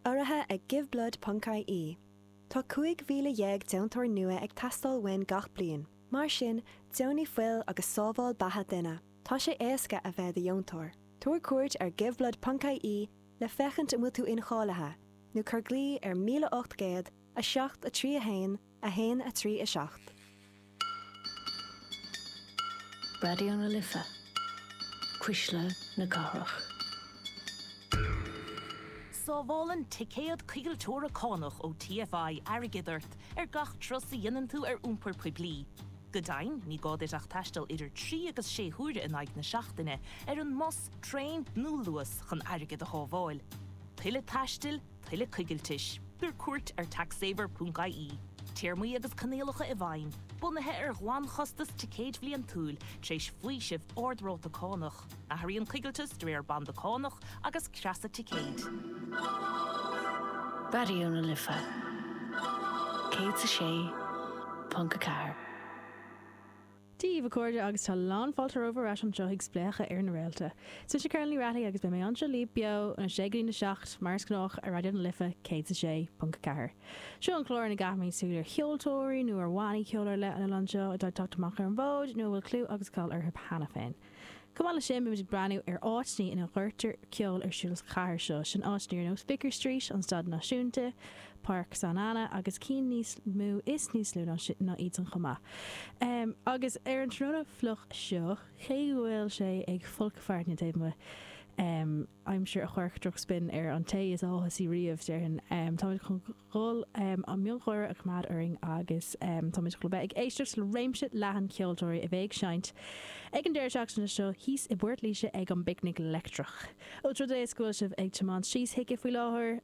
Urraithe ag GiveBlood ponc IE, Tá 15,000 deontóir nua ag teastáil uainn gach bliain, mar sin deonaigh fuil agus sábháil beatha duine. Tá sé éasca a bheith do dheontóir. Tabhair cuairt ar GiveBlood ponc IE le féachaint an bhfuil tú incháilithe, nó cuir glaoch ar 1800 7 3 1, A haon a trí a seacht. Raidió na Life, cuisle na cathrach. Sábhálann ticéad coigilteora cánach ó TFI airgead ort ar gach turas a dhéanann tú ar iompar poiblí. Go deimhin, ní gá duit ach taisteal idir trí agus sé huaire in aghaidh na seachtaine ar an mbus, traein nó Luas chun airgead a shábháil. Tuilleadh taistil? Tuilleadh coigiltis. Tabhair cuairt ar taxsaver.ie. Téarmaí agus coinníollacha i bhfeidhm, bunaithe ar ghlanchostas ticéid bhliantúil, tar éis faoiseamh ard-ráta cánach. Athraíonn coigilteas de réir banda cánach agus creasa ticéid. Raidió na Life 106.4. Dia daoibh, a chairde, agus tá lán fáilte romhaibh ar ais anseo chuig Spléachadh ar na Réalta. Is mise Cathal Ó Raghallaigh agus beidh mé anseo libh beo ón 6 go dtí a 7, mar is gnách, ar Raidió na Life 106.4. Seo an clár ina gcaithimid súil ar cheoltóirí nó ar bhannaí ceoil ar leith an oileáin seo atá ag teacht amach ar an bhfód nó a bhfuil clú agus cáil orthu cheana féin. Chomh maith leis sin, bímid ag breathnú ar áiteanna ina gcuirtear ceol ar siúl sa chathair seo. Sin áiteanna ar nós Vicar Street, an Staid Náisiúnta, Páirc San Anna agus cinn níos mó is níos lú ná iad san chomh maith. Agus ar an tráthnóna fliuch seo, cé go bhfuil sé ag folcadh fearthainne taobh amuigh, aimsir a chuirfeadh drochspion ar an té is áthasaí riamh, déarfainn, táimid chun an miongháire a choimeád orainn agus táimid chun a bheith ag éisteacht le réimse leathan ceoltóirí a bheidh ag seinnt ag an deireadh seachtaine seo thíos i bPort Laoise ag an bPicnic Leictreach. Más rud é is go bhfuil sibh ag tiomáint síos chuige faoi láthair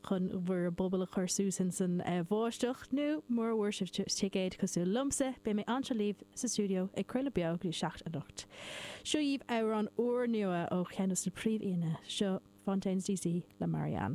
chun bhur bpuball a chur suas ins an bháisteach, nó mura bhfuair sibh ticéad cosúil liomsa, beidh mé anseo libh sa stiúideo ag craoladh beo go dtí a seacht anocht. Seo daoibh amhrán úrnua ó cheann des na príomh-aíonna, seo Fontaines D.C. le Marianne.